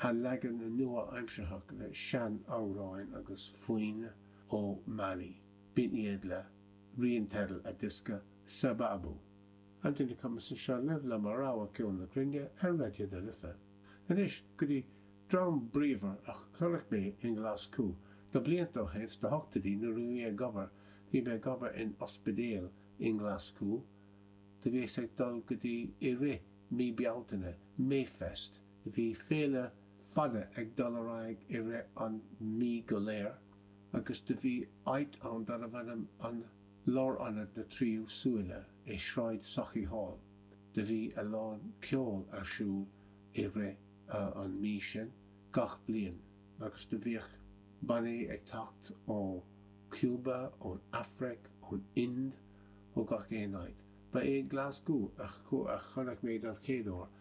a leagan nua-aimsearthach le sean-amhráin agus foinn ó Mali, b'in iad le rian teidil a diosca Sababu, an duine cumasach seo libh le mo rogha ceol na cruinne ar Raidió na Life. Anois go dtí dream bríomhar a chonaic mé i nGlaschú blianta ó shin sna hochtaidí nuair a bhí mé ag obair, bhí mé ag obair in ospidéal i nGlaschú, do bhíos ag dul go dtí i rith mí Bealtaine, Mayfest, Bhí féile fada ag dul ar aghaidh i rith an mhí go léir agus do bhí áit ann darbh ainm Lárionad na Tríú Súile i Sráid Sauchiehall. Do bhí a lán ceoil ar siúl i rith an mhí sin gach bliain agus do bhíodh bannaí ag teacht ó Chúba, ón Afraic, ón Ind, ó gach aon áit. Ba é Glaschú a chonaic mé don chéad uair.